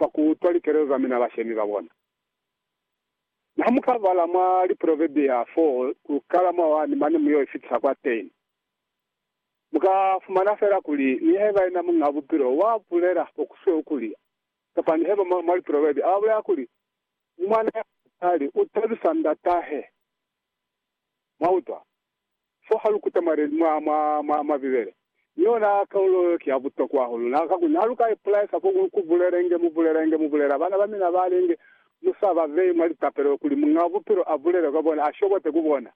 kwa ku utwa likelelo za mina bashemi ba bona. Mi ha mu ka bala mwa Liproverbia 4 ku kala mwa 1 mane mu yo ifitisa kwa 10, mu ka fumana fela kuli nihaiba yena Muñ'a Bupilo wa bulela fo ku sweu kuli, kapa nihaiba mwa, mwa Liproverbia a bulela kuli, Ni mwana ya musali u tabisa ndat'ahe. Mwa utwa? Fo ha lu kuta mwa, mwa, mwa, mwa, mwa Bibele, mi yona kaulo yo ki ya butokwa hahulu. Na, kakuli ha lu ka ipulaisa fo ku, ku bulelenge, mu bulelenge, mu bulela bana ba mina ba linge, mu sa ba beyi mwa litapelo kuli Muñ'a Bupilo a bulele kwa bona, a shobote ku bona,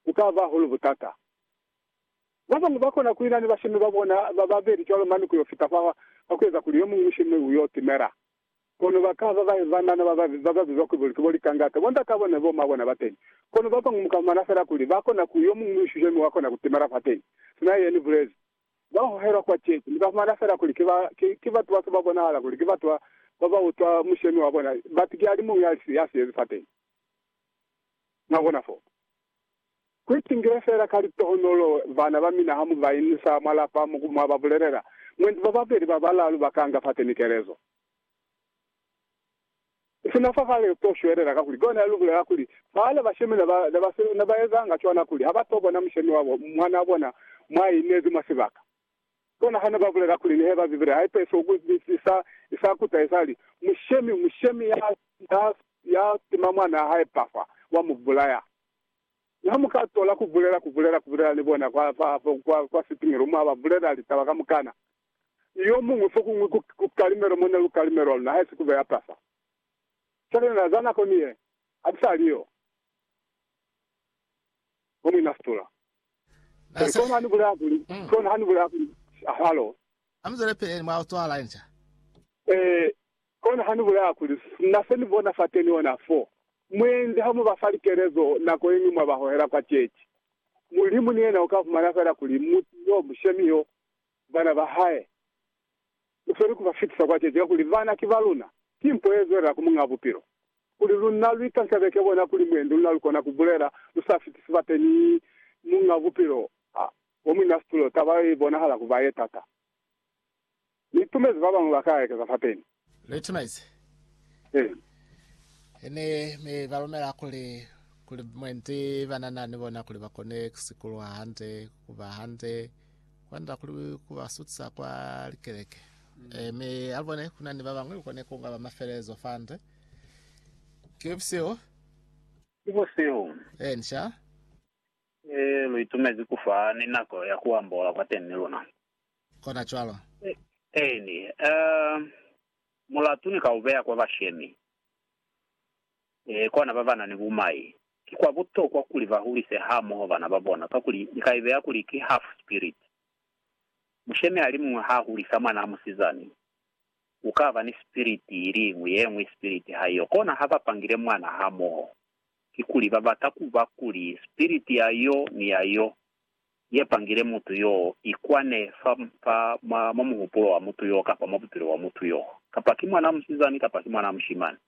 ku ka ba hahulu butata. Ba bañwi ba kona ku ina ni bashemi ba bona ba babeli cwalo mane ku yo fita fa, fa ku eza kuli yo muñwi mushemi u yo timela. Kono ba ka ba ba banana ba babi ba ba bizwa kuli bo, ki bo likangata, bondatabo ne bo mabona ba teni. Kono ba bañwi mu ka fumana fela kuli ba kona ku, yo muñwi u shushe mi wa kona ku timela fateni, sina ye ni bulezi. Ba hohelwa kwa ceci, mu ka fumana fela kuli ki ba, ki, ki batu ba si ba bonahala kuli ki batu ba, ba ba utwa mushemi wa bona, bati ki alimuñwi ya, ya siyezi fateni. Mwa bona foo? Ku itingile feela ka litohonolo bana ba mina ha mu ba inusa mwa lapa mo ku mwa ba bulelela. Mwendi ba babeli ba balaalu ba kanga fateni kelezo. Sina fa kale lu to shwelela kakuli kona lu bulela kuli, Bana ba shemi ne ba si na ba ezanga cwana kuli ha ba to bona mushemi wabo mwanaa bona mwa inezi mwa sibaka. Bona hane ba bulela kuli nihe ba Bibele ha i pesi oku ipitisisa, i sa kuta, i sa li, Mushemi, mushemi ya, ya, ya tima mwanaa hae Pafa, wa mu bulaya. Mi ha mu ka tola ku bulela, ku bulela, ku bulela ni bona kwa, fa, fa, kwa, kwa sitimelo, mwa ba bulela litaba kamukana. Yomuñwi fokuñwi ku, ku kalimelo mo ne lu kalimelwa luna, haisi kube ya Pafa. Cwale na, za nako ni ye, ha ku sa li yo. Mwamwena a fitola. Na Ki sa. kona ha ni bulaya kuli, ki kona ha ni bulaya kuli, halo? Ha mu zwele peli mwa cwala inca. Ee, ki kona ha ni bulaya kuli, na se ni bona fateni ona fo. Mwendi ha mu ba fa likelezo nako yeñwi mwa ba hohela kwa ceci, Mulimu ni yena u ka fumana fela kuli mutu yo, mushemi yo, bana ba hae, u sweli ku ba fitisa kwa ceci, kakuli bana ki ba luna. Ki mpo ye zwelela ku Muñaa Bupilo. Kuli luna lu itantabe ke bona kuli mwendu luna lu kona ku bulela lu sa fiti sibate ni Muñ'a Bupilo ha bo muina situlo, taba yo i bonahala ku ba ye tata. Ni itumezi ba bañwi ba ka ekeza fateni. Lu itumezi? Eena. Ene, mi ba lumela kuli, kuli mwendi ba na na ni bona kuli ba kone ku sikulwa hande, ku ba hande, kwanda kuli ku ba sutisa kwa likeleke. Mi, ha lu bone, ku na ni ba bañwi lu kone ku nga ba mafelelezo fande. Ki busihu. Ki busihu. Eh, nsha. E, lu itumezi ku fa ni nako ya ku ambola kwa teñi luna. Kona cwalo. Eeni, eh, mulatu ni ka u beya kwa bashemi, eh, kwa na ba ba na ni bumai. Ki kwa butokwa kuli ba hulise hamoho bana ba bona, kakuli ni ka ibeya kuli ki half-spirit. Mushemi alimuñwi ha hulisa mwanaa musizani, ku ka ba ni spiriti iliñwi ye ñwi, spiriti ha yo. Kona ha ba pangile mwana hamoho, kikuli ba bata ku ba kuli spiriti ya yo ni ya yo ye pangile mutu yoo i kwane fa, fa, mwa, mwa muhupulo wa mutu yoo kapa mwa bupilo bwa mutu yoo, kapa ki mwana musizani kapa ki mwana mushimani.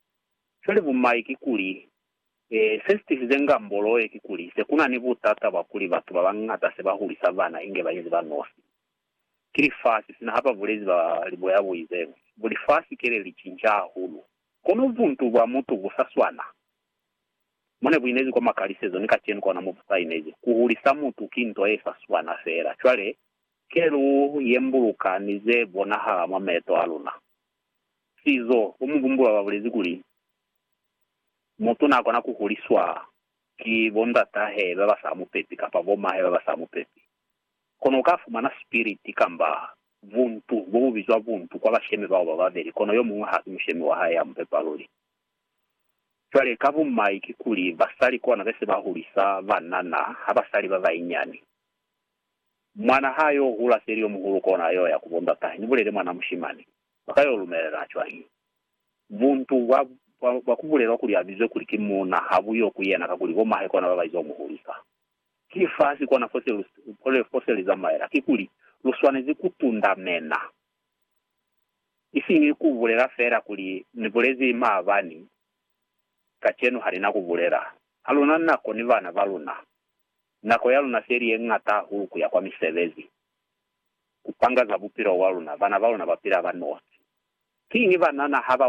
Cwale bumai kikuli, e, se si tisize ngambolo ye kikuli se ku na ni butata bwa kuli batu ba bañata se ba hulisa bana inge ba inzi ba nosi. Ki lifasi, sina ha ba bulezi ba liboya bu izeñwi, bu lifasi kele li cinca hahulu. Kono buntu bwa mutu bu sa swana. Mo ne bu inezi kwa makalisezo, ni kacenu kona mo bu sa inezi. Ku hulisa mutu ki nto ye sa swana feela. Cwale, ke lu yembuluka ni ze bonahala mwa meeto a luna. Sizo, bo mubumbulwa ba bulezi kuli, Mutu n'a kona ku huliswa ki bo ndatahe ba ba sa mu pepi kapa bo mahe ba ba sa mu pepi. Kono uka fumana sipiliti kamba buntu, bo bu bizwa buntu, kwa bashemi bao ba babeli, kono yo muñwi hasi mushemi wa hae ya mu pepa luli. Cwale, ka bumai kikuli, basali kona be se ba hulisa banana, ha basali ba bainyani. Mwana ha a yo hula seli yo muhulu kona a yo ya ku bondatahe, ni bulele mwana mushimani. Ba ka yo lumelela cwañi? Buntu bwa, bwa, bwa ku bulelwa kuli a bizwe kuli ki muuna, ha bu yo ku yena, kakuli bo mahe kona ba ba izo mu hulisa. Ki fasi kona fose lu, kona fose li zamaela. Kikuli, lu swanezi ku tundamena. Isiñi ku bulela fela kuli, Ni bulezi maabani, kacenu ha ni na ku bulela. Ha luna nako ni bana ba luna. Nako ya luna se li ye ñata hahulu ku ya kwa misebezi, ku panga za bupilo bwa luna, bana ba luna ba pila ba nosi. Kiñi banana ha ba.